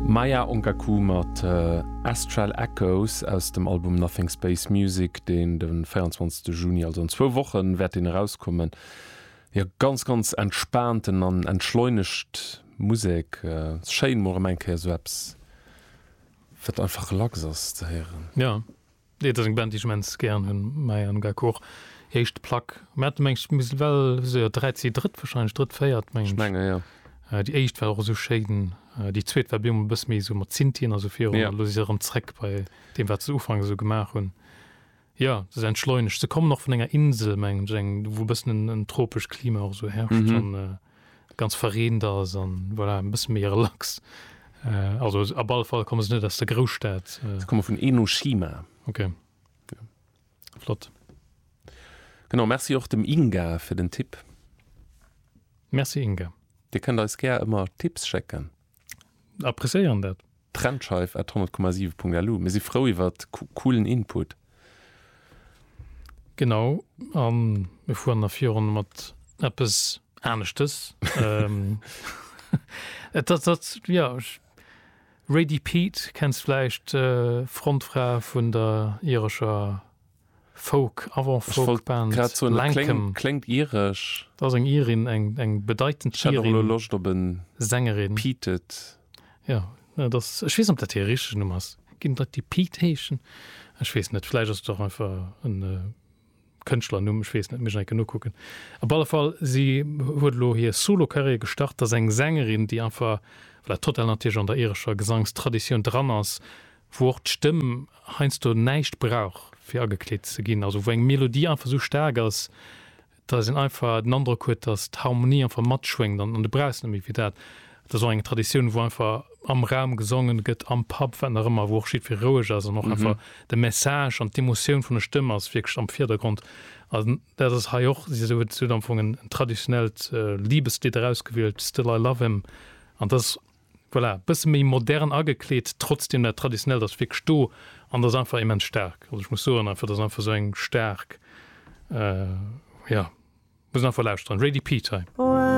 Maya Onkaku mat Astral Echoes aus dem Album Nothing Space Music, deen de 24 Juni, also an zwou Woche wäert deen erauskommen. Jo, ganz ganz entspaanten an entschleunegt Musek. Schéin mol erëm eng Kéier esou eppes wat einfach relax ass ze héieren. Jo. Nee, et ass eng Band déi ech immens gären hunn, Maja an Gakor, hir éischt Plack. Mir hate meng ech mis well esou jo dräi CD, drëtt wahrscheinlech, drëtt, véiert meng Ech ech. menge jo. Déi éischt war och esou schéin, déi zweet war bemol e bësse méi esou mat Synthien a sou virun Jo. a lo si se erëm zréck bei deem wat se ufanks esou gemaach hunn. Jo, se si entschleunegt. Se kommen och vun enger Insel meng ech, eng wou e bëssen en tropescht Klima och esou herrscht Mhm. an. ganz verreent ass an voilà en bëssen méi relax. Also ab alle Fall komme se net aus der Grousstad. Se komme vun Enoshima. Ok flott. Genau, Merci och dem Inga fir den Tipp. Merci Inga. Dir kënnt eis gär ëmmer Tipps schécken. Appréciéieren dat. Trennscheif at 100,7.lu, Mir si frou iwwer coolen Input. Genau, a mir fueren nach virun mat eppes aneschtes. Et ass dat, jo, Rady Pete kenns vläicht, Frontfra vun der irescher. Folk, Avant-Folk Band, Lankum. Kléngt iresch. Dat ass eng Irin, eng bedeitend Irin. Ech hat och elo Loscht op en Sängerin. Peated. Jo, dat ass, ech weess net, ob dat hir richtegen Numm ass. Ginn et Leit, déi Pete heeschen? Ech weess net, vläicht ass et och einfach e Kënschtlernumm, ech weess net, muss ech nach eng Kéier nokucken. Op alle Fall, si huet elo hir Solo-Karriär gestart. Dat ass eng Sängerin, déi einfach, well dat total natierlech an der irescher Gesangstraditioun dran ass, wou och d'Stëmm heiansdo näischt brauch fir agekleet ze ginn, also wou eng Melodie einfach esou staark ass, dass een einfach den Androck huet, dass d'Harmonie einfach matschwéngt an du brauchs net méi fir dat. Dat ass och eng Traditioun, wou einfach am Raum gesongen gëtt, am Pub, wat nach ëmmer, wou och jiddweree roueg ass an och einfach de Message an d'Emotioun vun der Stëmm ass wierklech am Virdergrond. A dat ass hei och esou, huet am Fong en traditionellt Liebeslidd erausgewielt, Still I Love Him, an dat ass Voilà, bësse méi modern agekleet, trotzdem dat traditionellt ass wierklech do an ass einfach immens staark. Also ech muss soen einfach, dat ass einfach esou eng staark, jo, muss een einfach lauschteren, Rady Pete hei.